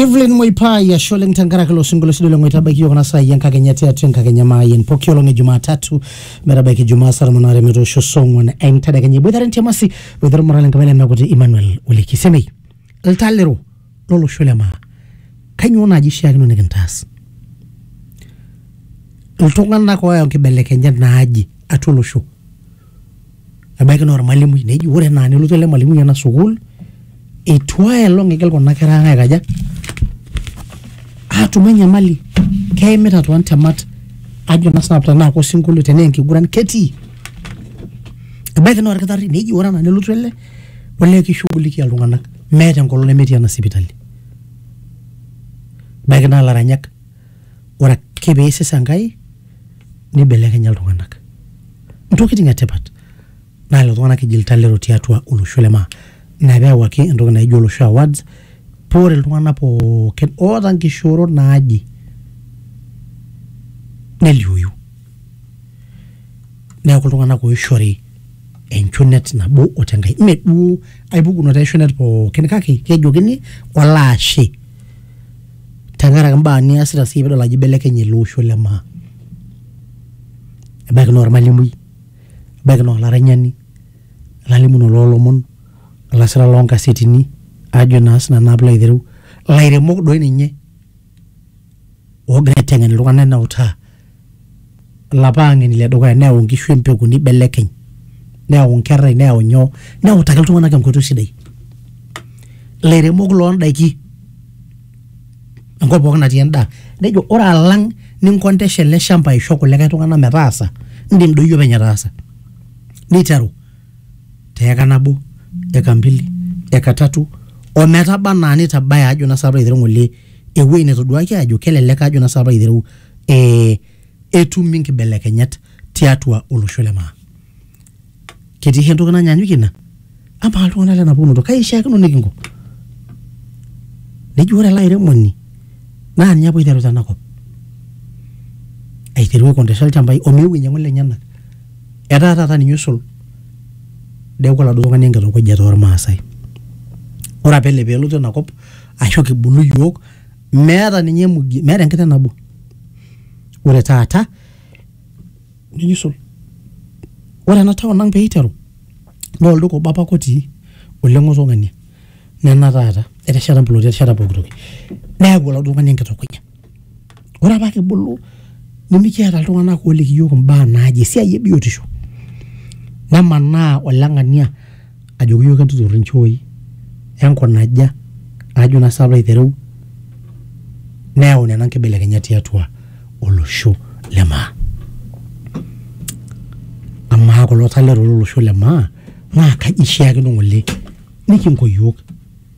evelyn moipai ashe oleng tenkaraki ilo sinkolio long'oe tabaiki yiok kuna saai enkakenya tiatua enkakenya maayen poki olong e jumatatu metabaiki jumaa saa tomon aare metoosho saa ong'uan entedekenya iboitare ntiamasi boitare olmorale enkapai lemeakuti emmanuel oleki semei ltalero lolosho le maa kainyoo naaji ishiakino nikintaas iltung'anak ooyau nkibelekenyat naaji atua olosho ebaiki naa ormalimui neji ore enaa nelotu ele malimui ena sukuul etu ae olong igil kuna kera ang aikaja atum enyamali keimita tontemat ajo naa sinanu tenaa kosinkolio tenaa enkiguran ketii ebaiki naa orkitarri neji ore enaa nelotu ele olee kishughulikia iltung'anak meeta enkolong nemetii ena sipitali ebaiki naa ilaranyak ore ake piisis Enkai nibelekenya iltung'anak. ntokitin e tipat naa lelo tung'anak eji iltalero tiatua olosho le maa. Ina pee eyawuaki entoki naijo olosho awards paa ore iltung'anak pookin oota nkishoorot naaje neliooyu. Neeku iltung'anak oishori enchunet nabo o te nkae. Mme duo ai pukunoto e shunet pookin kake kejokini olaashe tenkaraki imbaa niasita siyie piidol ajo ibelekenye ele osho le maa. ebaiki naa ormalimui, ebaiki naa olaranyani, olalimunoni loo lomon, olasirani loo nkasetini ajo naa sii nanu pilo aitereu, ilairemok doi ninye oogira aiteng'en iltung'anak neutaa, ilapa ang'eni le dukuya neyau nkishu empeku nibelekeny, neyau nkerai neyau nyoo neutaki iltung'anak enkoitoi sidai. Ilairemok loo ndaiki. enkop pookin natii endaa nejo ore alang ninkontesha ele shamba aisho kulikae tung'anak metaasa indim doi iyie openy ataasa niteru teeka nabo eka mbili eka tatu ometaba anaa nitabaya ajo naa saapa aitereu ng'ole ewueji netoduaki ajo kelelek ajo naa saapa aitereu eh, etumi inkibelekenyat tiatua olosho le maa. ketii hii entoki nanyanyukie ina amaa iltung'anak lena pukunoto kai ishiakino nikinko neji ore ele airemoni naa ninye apa oiteru tenakop aiteru aikondesha ilchambai omeu ainyiang'u ilenyenak etaa taata ninye oisul neeku oladuo tung'ani enkitongojata ormaasai ore apa ele peelotu enakop ashu kibulu iyiok meeta ninye emugi meeta enkiteng nabo ore taata nikisul ore ena town ang peiteru naa olduka obo apake otii ole ng'oto ng'ania nena taata etesheta imploti etesheta pokitoki neyau oladuo tung'ani enkitukuja ore apa kibulu nimikiata iltung'anak oliki iyiok imbaa naaje esiai ebiotisho nemanaa oleng'ania. ajoki iyiook entutur inchooi enkunaja ajo naa sii alo aitereu neyau nena nkibelekenyat tiatua olosho le maa. Amaa kulo taleta lolosho le maa naa kaji eishiakino ng'ole nikinko iyiook.